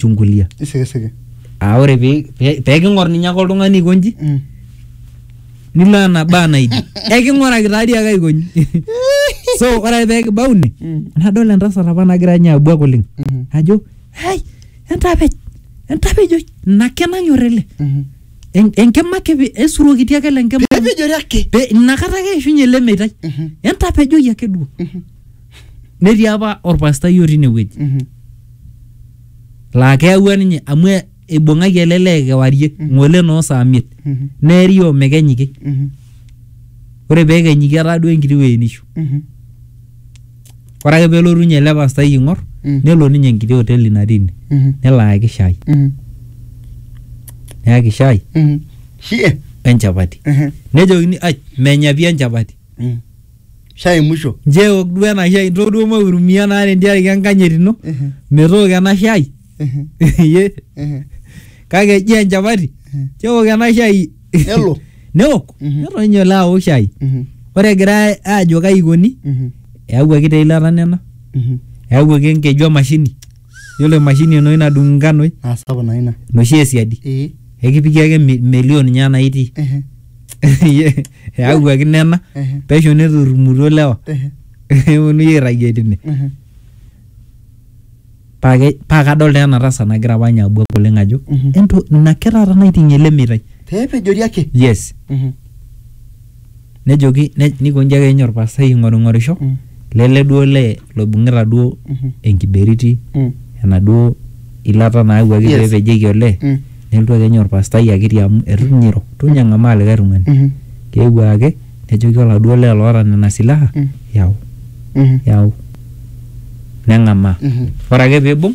chungulia isikisiki aa ore pee pee- pee king'or ninye ake oltung'ani aikonji Mm. nilo ena baa naidi eking'oraki taadii ake aikonji so ore ake pee kibau ine Mm. nadol entasat apa nagira ninye abuak oleng Mhm. ajo hai entapej entapej oi ina ake nanyor ele Mhm. En- enkima ake pe- esurokiti ake le nkima pepejori ake pe inakata ake eishunye ele meitai Mhm. entapejoki ake duo Mhm. netii apa orpastai otii inewueji Mhm. laa keyaua ninye amu e- eibung'aki ele lee kewarie ng'ole noo saa miet Mhm. neeri omekenyiki Mhm. ore peekenyiki etaa duo enkiti wueji nishu Mhm. ore ake pelotu ninye ele pastai aing'or Mm. nelo ninye enkiti hoteli natii ine Mhm. nelo ayaki shai Mhm. neyaki shai Mhm. Shie. wenchapati Mhm. nejokini ai menya pii enchapati Mm. shai musho nje eok duo ena shai nchoo duo maurumia naa tentiaraki enkanyit ino Ehe, metooko ena shai ehe, Ye, ehe. kake eji enchapati Mhm. nchoo eok ena shai Nelo. neok Mhm. neton ninye ole aok shai Mhm, ore egirai aajo kai ikoni mhm, eyawuaki taa eilata nena mhm. eyawuaki enkeju emashini Yiolo emashini enoshi nadung inganoi naa sapuk naa ina enoshi esiadi ee ekipiki ake mi- melio ninye anaa itii ehe eyawuaki nena ehe pesho neturrumutuo lewa ehe neponunui airragie tine ehe paa ke- paa kadol taa ena tasat nagira apa ninye abuak oleng ajo Mhm. ento ina ake taata naiting'ie ele meitai pepejori ake yes Mhm. nejoki ne- niko nji ake inye orpastai aing'oring'orisho Mm. lele duo lee loibung'ita duo Mhm. enkiberiti Mm. enaduo ilata naawuaki Yes. pepejieki olee Mm. nelotu ake ninye orpastai akiti amu etu ninye eiro etu ninye eng'amaa likae tung'ani Mhm. keewuo ake nejoki oladuo lee loota nena silaha Mm. yau Mhm. yau neng'amaa Mhm. ore ake piibung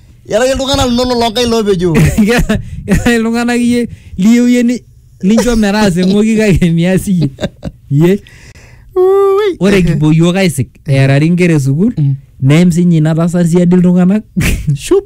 Iyata iyie iltung'anak linonok loo nkaik loopejo. Keeta keeta iltung'anak iyie liyieu iyie ni- nincho metaasa eng'oki kake mias iyie. Iyie. Ui. Ore kipuo iyiook aisik eerari inkera e sukuul Mm. neim sinye ina tasat siadi iltung'anak. Shup.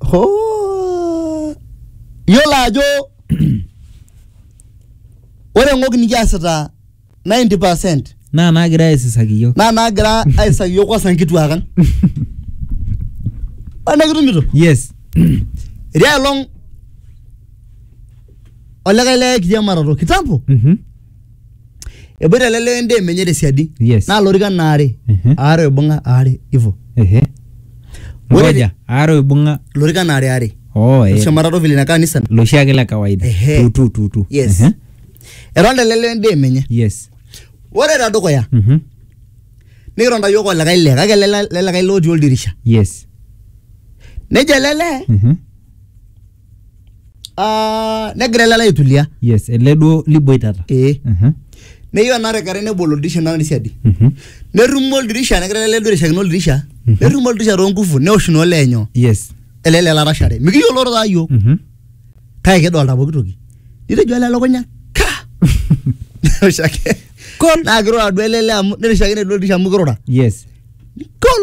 Hoo. Yiolo ajo ore ng'ok nikiasita 90% naa naagira aisisaki iyiok naa naagira aisaki yiok kwanza nkituak ang. Ore nikitumito yes etii aelong olikae lee kiriamarato kitambo Mhm. eboita ele lee endaa emenye tesiadi Yes. naa lorikan aare Mhm. aare oibung'a aare ivo Ehe. Ore- Ngoja, aare oibung'a lorikan aare aare oh, eh, shumata tovile ina kanisa loshi ake la kawaida Ehe. Tu, tu, tu, tu. yes Ehe. etonta ele lee endaa emenye yes ore tedukuya Mhm. nikitonta yiok olikae lee kake ele le- lelikae lee otii oldirisha yes nejo ele lee Mhm. Ah, negira ele alo aitulia yes ele duo liboitata ee Mhm, neyieu ena rekerai nebol oldirisha naa siadi mhm. nerrumo oldirisha negira ele duo airishakino oldirisha Mhm. nerrumo oldirisha toonkufu neosh naa olee nyoo yes ele lee larashare mikiyioloro taa yiok Mhm. kake kidolta pooki toki nitejo ele elukunya ka neosh ake Kol. naa kirura duo ele lee amu nirishakine duo oldirisha amu kirura yes kol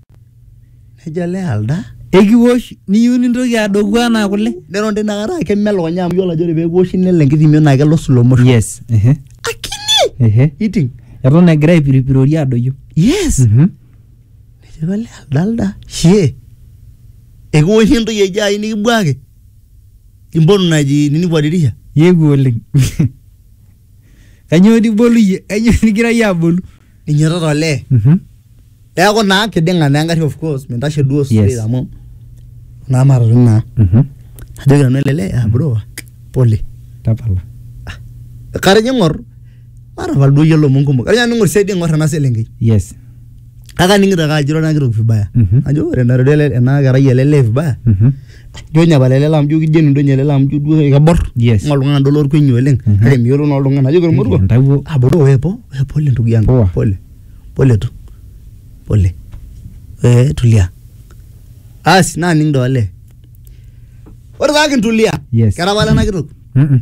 Nejo ele alda, ekiwosh niyieu nintoki adoku anaa kule. Neton tina kata keme elukunya amu iyiolo ajo ore pee kiwoshi nelo enkitimio naa kelo slow motion. Yes. Ehe. Akini! Ehe. Iting. Eton egira aipiripirori adoyio. Yes. Mhm. Nejo ele alda alda, shie. Ekiwosh entoki eji ai nikibuaki. Impotu naji nini kwa dirisha. Yewuo oleng. Kanyoo dii ibolu iyie? Kanyoo nigira iyie abolu? ninyototo olee Mhm. neeku naa kiding'a naa engarri of course mintashe duo straight Yes. amu naa matatu naa Mhm. ajoki nanu ele lee ah bro pole Tapala. katajo ing'or matapal duo iyiolo lomon kumok katajo nanu ing'or siadi ing'or ena selenkei Yes. kake aning'ito ake ajo ira ena kitok vibaya Mhm. ajo ore ena ena kerai ele lee vibaya Mhm. ijo ninye pala ele lam ijo kigenu duo ninye ele lam ijo duo kebor Yes. ng'o oltung'ani duo lorkuenyi oleng Mhm. kake miyiolo naa oltung'ani ajoki ormoruo Entawuo. aboro we po we pole ndugu yangu Poa. pole pole tu pole we tulia asi naning dole ore taa kintulia Yes. kera pala ena kitok Mm-mm.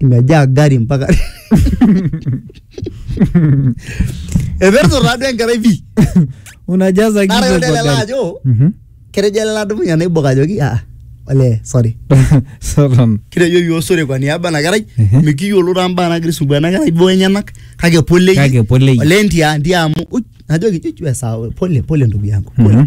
imejaa gari mpaka eperto taaduo enkerai pi unajaza nara kichwa kwa yolelele gari. ajo Mhm. ketejo ele ladumunye naibok ajoki ah olee sorry Satan. kitejo yioo sore kwa niaba ena kerai Mhm. mikiyiolo taa mbaa nagira aisumbua ena kerai boo enyenak kake pole iyie. Kake pole iyie. olee ntia ntia amu uj, najoki chuchu esaa pole pole ndugu yangu pole Mhm.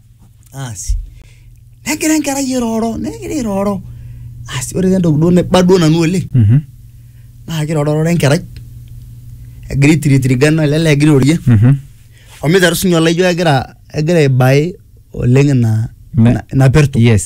asi negira enkerai airoro negira airoro asi ore entoki duo naiba duo nanu oleng Mhm. naa kirorororo enkerai egira aitiritirigana ele lee egira airorie Mhm. omiteru sinye olaijo egira egira aibae oleng ina Me- ina- ina perto yes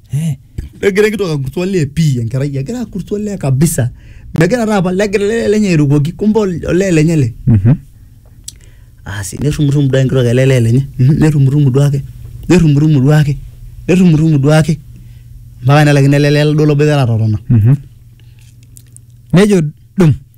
Eh, negira enkitook akurt olee pii enkerai egira akurt olee kabisa megira taa apa legira ele lenye airukoki kumbe ol- olee lenye ele Mhm. asi nerrumurrumu duo enkitok ele lee lenye Mhm, nerrumurrumu duake nerrumurrumu duake nerrumurrumu duake mpaka nelaikino ele lee duo loboitare atotona Mhm. nejo dum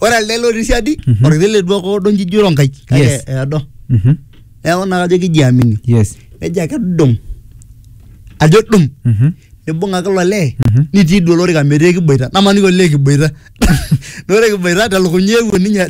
ore elde lotii siadi Mhm. orkiti le duo ake odo nji ijo ronkai kake Yes. eedo Mhm. neeku naa kajo kijiamini Yes. nejo ake dum ajo dum Mhm. nibung ake ilo lee Mhm. nitii duo olorika metii ekiboita namaniki olee kiboita na ore kiboita telukunya eewuo ninye